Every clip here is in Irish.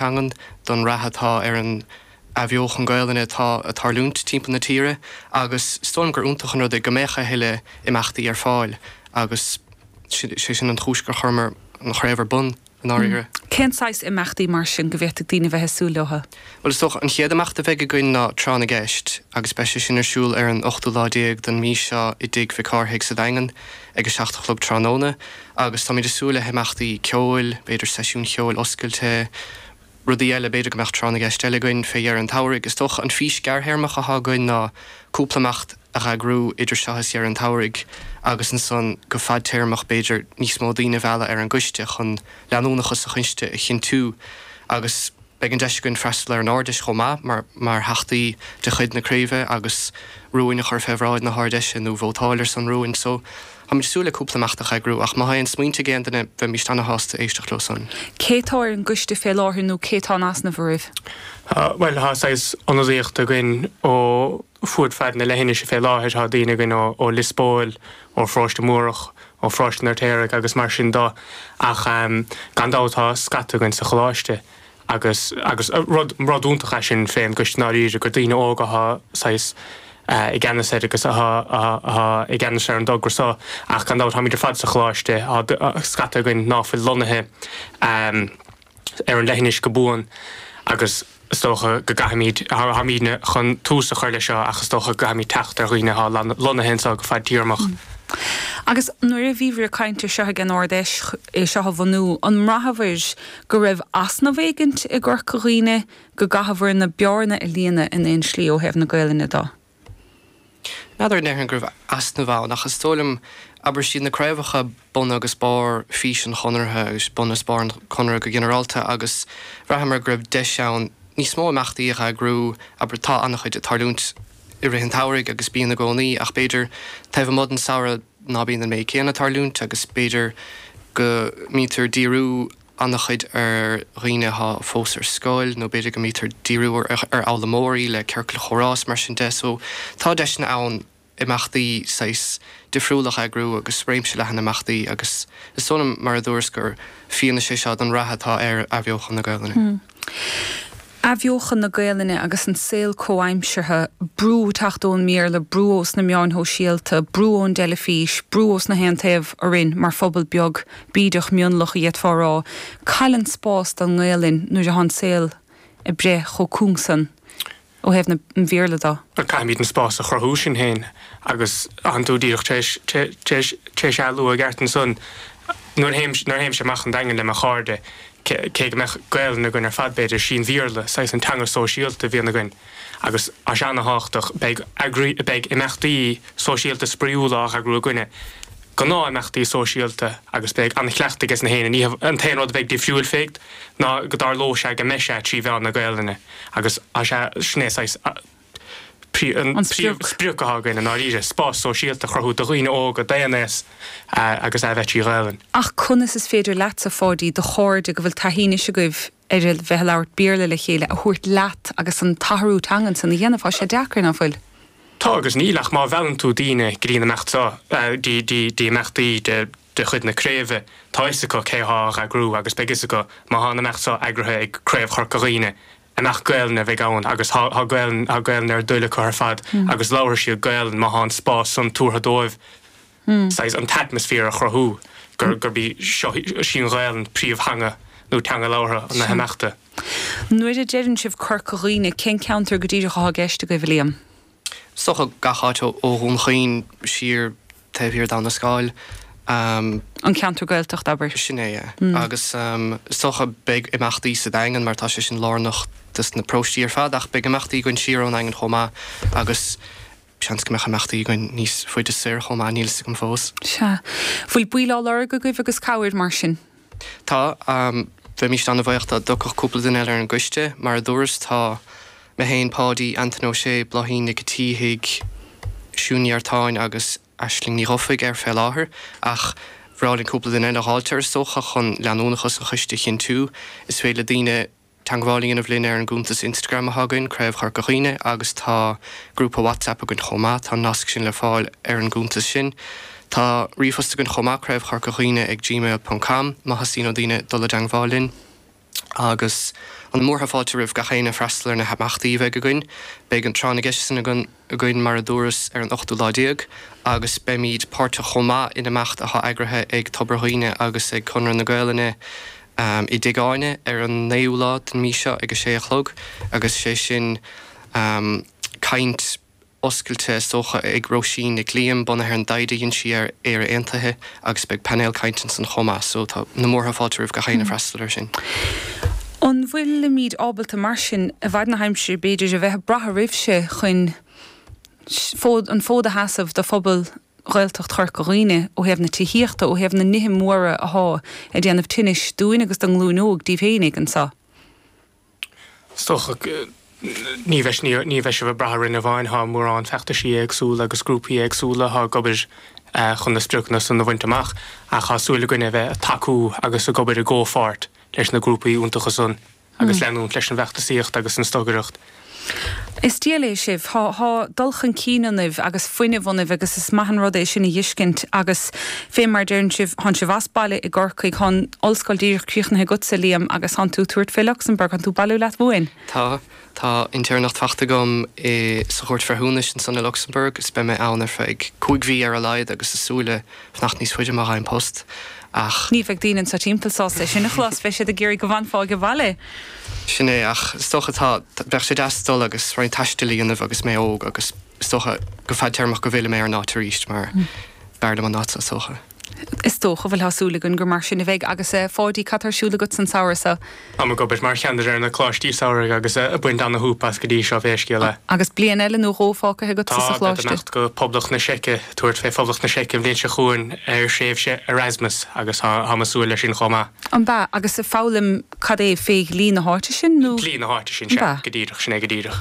teangan, don rath atá ar an athbheochan Ghaelainne atá ag tarlúint timpeall na tíre agus is dóigh liom gur iontach an rud é go mbeadh a thuilleadh imeachtaí ar fáil agus sé sin an chúis gur chuireamar an chraobh ar bun i ndáiríre. Cén saghas imeachtaí mar sin go bhféadfadh daoine a bheith ag súil leo? Bhuel, is dócha an chéad imeacht a bheidh againn ná Tráth na gCeist agus beidh sé sin ar siúl ar an ochtú lá déag den mhí seo i dTigh Mhic Cárthaigh sa Daingean ag a seacht a chlog tráthnóna. Agus táimid ag súil le himeachtaí ceoil, b'fhéidir seisiún ceoil oscailte, rudaí eile, b'fhéidir go mbeadh tráth na gceist eile againn fé dheireadh an tsamhraidh. Is dócha an fís gearrthéarmach atá againn ná cúpla imeacht a eagrú idir seo agus deireadh an tsamhraidh agus ansan go fadtéarmach b'fhéidir níos mó daoine a mhealladh ar an gcoiste chun leanúnachas an choiste a chinntiú agus Beidh an deis againn freastal ar an Ard-Fheis chomh maith mar theachtaí de chuid na craoibhe agus rúin a chur fé bhráid na hArd-Fheise nó vótáil ar son rúin. So, táimid ag súil le cúpla imeacht a eagrú ach má tá aon smaointe ag aon duine bheimíst ana-shásta éisteacht leo san. Cé tá ar an gcoiste fé láthair nó cé tá in easnamh oraibh? Bhuel, tá saghas ionadaíocht againn ó. fud fad na leithinise fé láthair. Tá daoine againn ó Lios Póil, ó Pharóiste Múrach, ó Pharóiste an Fheirtéaraigh agus mar sin de ach gan dabht tá scata againn sa choláiste agus agus rud iontach é sin fén gcoiste i ndáiríre gur daoine óga athá saghas i gceannas air agus athá athá i gceannas ar an dtogara so ach gan dabht táimid ar fad sa choláiste, tá scata againn ná fuil lonnaithe ar an leithinis go buan agus is dócha go gcaithfimid, táimidne, chun tús a chur leis seo ach is dócha go gcaithfimid teacht ar dhaoine atá lonnaithe anseo go fadtéarmach. Agus nuair a bhí sibh ag caint air seo ag an Ard-Fheis é seo a bhunú, an mbraitheabhair go raibh easnamh éigint i gCorca Dhuibhne, go gcaitheabhair aon bhearna a líonadh in aon slí ó thaobh na Gaelainne do? N'fheadar an ndéarfainn go raibh easnamh ann, ach is dóigh liom, abair, is iad na craobhacha bun agus barr fís an Chonartha, agus bun is barr an Chonartha go ginearálta, agus bhraitheamar go raibh deis ann níos mó imeachtaí a eagrú, abair, tá ana-chuid ag tarlúint i rith an tsamhraidh, agus bíonn i gcónaí, ach b'fhéidir taobh amuigh den samhradh ná bíonn an méid céanna ag tarlúint, agus b'fhéidir go mbítear díriú. ana-chuid ar dhaoine atá fós ar scoil nó b'fhéidir go mbítear díriú ar fhoghlaimeoirí le ciorcail chomhrá is mar sin de so tá deiseanna ann imeachtaí saghas difriúil a eagrú agus réimse leathan imeachtaí agus is dóigh liom mar a dúras gur fianaise é seo don rath atá ar athbheochan na Gaelainne. Athbheochan na Gaelainne agus an saol comhaimseartha, brú ag teacht ón mBéarla, brú ós na meáin shóisialta, brú ón dteilifís, brú ós gach aon taobh orainn mar phobal beag bídeach mionlach a d'fhéadfá a rá, cá bhfuil an spás don nGaelainn nuair atá an saol ag breith chomh cúng san. ó thaobh an Bhéarla de. Bhuel, caithfimid an spás a chruthú, sin féin. Agus tánn tú díreach tar éis é a lua i gceart ansan, nuair a théimse amach an Daingean le mo chairde, cé go mbeadh Gaolainn againn ar fad, b'fhéidir, sin Béarla saghas an teanga sóisialta a bhíonn againn. Agus tá sé ana-tháchtach. Beidh imeachtaí sóisialta spraíúla á n-eagrú againne, gnáth-imeachtaí sóisialta, agus beidh an-chleachtadh aige gach éinne. An t-aon rud a bheidh difriúil, féach, ná go dtarlóidh sé go mbeidh sé trí mheán na Gaolainne. Agus sea, sin é saghas an príomhsprioc atá againn i ndáiríre, spás sóisialta a chruthú do dhaoine óga d'aon aos agus a bheith trí Ghaelainn. Ach conas is féidir leatsa, Pháidí, do chairde go bhfuil taithí anois agaibh ar a bheith a labhairt Béarla le chéile, a thabhairt leat agus an t-athrú teangan san a dhéanamh? Tá sé deacair, ná fuil? Tá agus níl ach má mheallann tú daoine go dtí an imeacht seo, dtí imeachtaí de. de chuid na craoibhe, tá 'fhios acu cé thá á eagrú agus beidh 'fhios acu má thá an imeacht so eagraithe ag Craobh Chorca Dhuibhne, mbeidh, Gaelainn a bheidh ann agus thá Gaelainn, thá Gaelainn ar a dtoil acu ar fad agus labharfaidh siad Gaelainn má thá an spás san tabhartha dóibh, saghas, an t-atmaisféar a chruthú gur, gurb í seo, sí an Ghaelainn príomhtheanga nó teanga labhartha na himeachta. Nuair a deireann sibh Corca Dhuibhne, cén ceantar go díreach athá i gceist agaibh, a Liam? Is dócha gach áit ó Dhún Chaoin soir taobh thiar d'Abhainn an Scáil. An ceantar Gaeltachta, abair. Sin é, yeah. Agus is dócha beidh imeachtaí sa Daingean mar tá sé sin lárnach do na paróistí ar fad ach beidh imeachtaí againn siar ón Daingean chomh maith agus seans go mbeadh imeachtaí againn níos faide soir chomh maith, níl 'fhios agam fós. Sea. Bhfuil baill á lorg agaibh agus cabhair mar sin? Tá. Bheimíst ana bhaoch dá dtiocfadh cúpla duine eile ar an gcoiste. Mar a dúras tá mé féin, Páidí, Antaine Ó Sé, Bláithín Nic an tSíthigh, Siún Ní Artáin agus Aisling Ní Dhufaigh ar fé láthair, ach bhreá linn cúpla duine eile a dh'fháilt ar is dócha chun leanúnachas an choiste a chinntiú. Is féidir le daoine. teagmháil a dhéanamh linn ar an gcuntas Instagram atá againn, Craobh Chorca Dhuibhne, agus tá grúpa WhatsApp againn chomh maith, tá an nasc sin le fáil ar an gcuntas sin. Tá ríomhphost againn chomh maith, craobhchorcadhuibhne ag gmail ponc com, má theastaíonn ó daoine dul i dteagmháil linn. Agus na múrtha fáilte roimh gach éinne freastal ar na himeachtaí a bheidh againn. Beidh an Tráth na gCeist san againn. againn, mar a dúras, ar an ochtú lá déag agus beimid páirteach chomh maith in imeacht atá eagraithe ag Tobar Dhuibhne agus ag Conradh na Gaolainne i dTigh Áine ar an naoú lá den mhí seo ag a sé a chlog agus sé sin caint oscailte is dócha ag Róisín Nic Liam bunaithe ar an dtaighde a dhein sí ar Éire Aontaithe. Agus beidh painéal cainte ansan chomh maith so tá na múrtha fáilte roimh gach éinne freastal air sin. An bhfuilimid ábalta mar sin, i bhfaid na haimsire b'fhéidir, a bheith ag brath oraibhse chun an fód a sheasamh do phobal Ghaeltacht Chorca Dhuibhne ó thaobh na tithíochta, ó thaobh na nithe móra athá ag déanamh tinnis dúinn agus don nglúin óg, díbh fhéinig, anseo? Is dócha ní bheidh sibh ag brath orainn amháin, tá mórán feachtaisí éagsúla agus grúpaí éagsúla atá ag obair chun na spriocanna san a bhaint amach, ach tá súil againne a bheith ag tacú agus ag obair i gcomhpháirt leis na grúpaí iontacha san agus leanúint leis an bhfeachtasaíocht agus an stocaireacht. Is diail é sibh. Tá, tá dul chun cinn ionaibh agus fuinneamh ionaibh agus is maith an rud é sin a dh'fhiscint agus fé mar a deireann sibh, thán sibh as baile i gCorcaigh, thán ollscoil díreach críochnaithe agatsa, Liam, agus thán tú ag tabhairt fé Luxembourg, thán tú ag bailiú leat uainn. Tá. Tá intéirneacht fachta agam i, sa Chúirt Bhreithiúnais ansan i Luxembourg is beidh mé ann ar feadh cúig mhí ar a laghad agus ag súil le fanacht níos faide má fhaighim post, ach. ní bheidh daoine anseo timpeall sásta é sin a chlos, beidh siad ag iarraidh go bhfanfá ag baile. Sin é, ach is dócha, tá, bheadh sé deas dul agus roinnt taistil a dhéanamh agus mé óg agus is dócha, go fadtéarmach go bhfillfidh mé ar an áit arís mar b'fhearr liom an áit seo is dócha. Is dócha, bhuel, tá súil againn gur mar sin a bheidh, agus eh Pháidí cad tá ar siúl agat sa tsamhradh so? Táim ag obair mar cheannaire ar na coláistí samhraidh agus ag baint ana-shúp as go dtí seo, pé scéal é. Agus bliain eile nó dhó fágtha agatsa sa choláiste. Tá. Imeacht go Poblacht na Seice, tabhairt fé Phoblacht na Seice an bhliain seo chugainn ar thréimhse Erasmus agus tá táim ag súil leis sin chomh maith. An b'ea? Agus ag foghlaim cad é, faoi dhlí na háite sin nó? Dlí na háite sin, sea. Go díreach, sin é go díreach.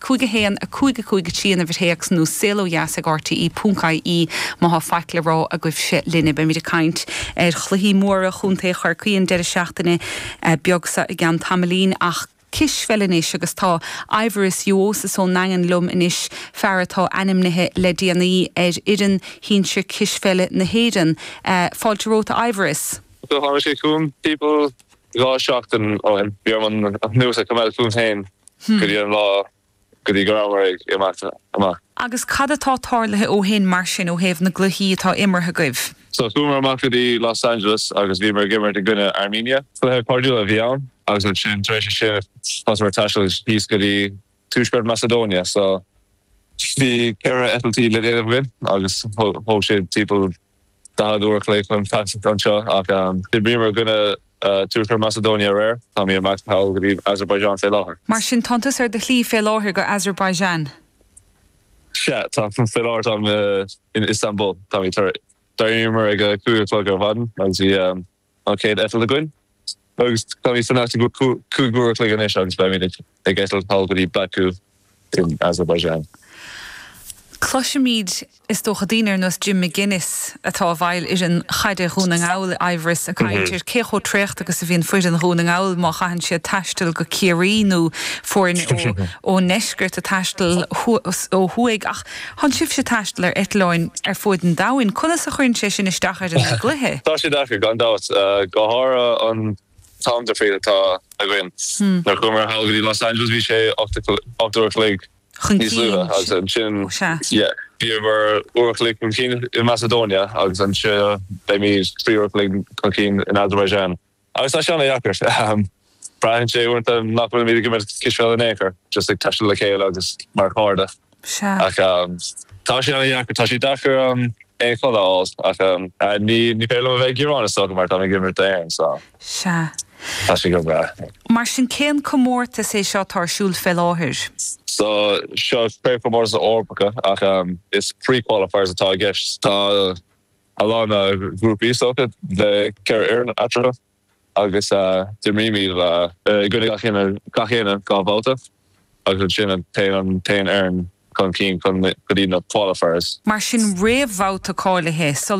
5 1 5 5 3 An uimhir théacs nó saolodheas ag RTÉ.ie má thá faic le rá agaibhse linne. Beimid ag caint ar chluichí móra Chontae Chorcaí an deireadh seachtaine beag so i gceann tamaillín ach cispheil anois agus tá Aivaras Uosis ón nDaingean liom anois, fear atá ainmnithe le déanaí ar fhoireann shinsir cispheile na hÉireann. Fáilte romhat a Aivaras. Do tháinig sé chugam timpeall dhá seachtain ó shin. Bhí orm an news a choimeád fúm féin Go dtí an lá go dtí go rabhamar ag imeacht amach. Agus cad atá tarlaithe ó shin mar sin ó thaobh na gcluichí atá imeartha agaibh? So, chuamar amach go dtí Los Angeles agus bhíomar ag imirt i gcoinne Armenia. Cluiche cairdiúil a bhí ann agus ansin tar éis sin thosnaíomar ag taisteal síos go dtí tuaisceart Macedonia. So, bhí ceithre eitiltí le déanamh againn agus thóg sé timpeall 40 uair a chloig chun taisteal anseo ach d'imríomar i gcoinne Tuaisceart Macedonia aréir. Táimid ag imeacht sall go dtí Azerbaijan fé láthair. Mar sin tánn tú ar do shlí fé láthair go Azerbaijan? Sea, táim. Fé láthair táim in Istanbul. Táimid tar. D'éiríomar ag a cúig a chlog ar maidin agus bhí. an chéad eitilt againn agus táimid san áit seo cúig uair a chloig anois agus beimid ag eitilt sall go dtí Baku in Azerbaijan. Cloisimid, is dócha, daoine ar nós Jim McGuinness atá i bhfeighil fhoireann chaide Dhún na nGall i mbliana ag caint ar cé chomh traochta agus a bhíonn foireann Dhún na nGall má chaitheann siad taisteal go Ciarraí nó foirne ón ndeisceart ag taisteal ó thuaidh ach Tánn sibhse ag taisteal ar eitleáin ar fuaid an domhain, conas a chuireann sé sin isteach ar an gcluiche? Tá sé deacair, gan dabht, go háirithe an time difference atá againn. Nuair a chuamar thall go dtí Los Angeles bhí sé ocht uair a chloig níos luaithe agus ansin bhíomar uair a chloig chun cinn in Macedonia agus anseo beimid trí uair a chloig chun cinn in Azerbaijan. Agus tá sin an-dheacair. Braitheann sé uaireanta nach bhfuilimid ag imirt cispheile in aon chor, just ag taisteal le chéile agus mar chairde. Sea. Ach tá sé an-dheacair, tá sé deacair aon chodladh a fháil ach ní féidir liom a bheith ag gearán, is dócha, mar táim ag imirt d'Éirinn so Sea. tá sé go breá. Mar sin, cén comórtas é seo atá ar siúl fé láthair? So, seo craobhchomórtas na Eorpacha ach is pre-qualifiers atá i gceist. Tá. a lán grúpaí, is dócha, le ceithre fhoireann eatarthu agus imrímid i gcoinne gach éinne dhá bhabhta agus ansin téann an t-aon fhoireann chun cinn go dtí na qualifiers. Mar sin réamhbhabhta cáilithe so.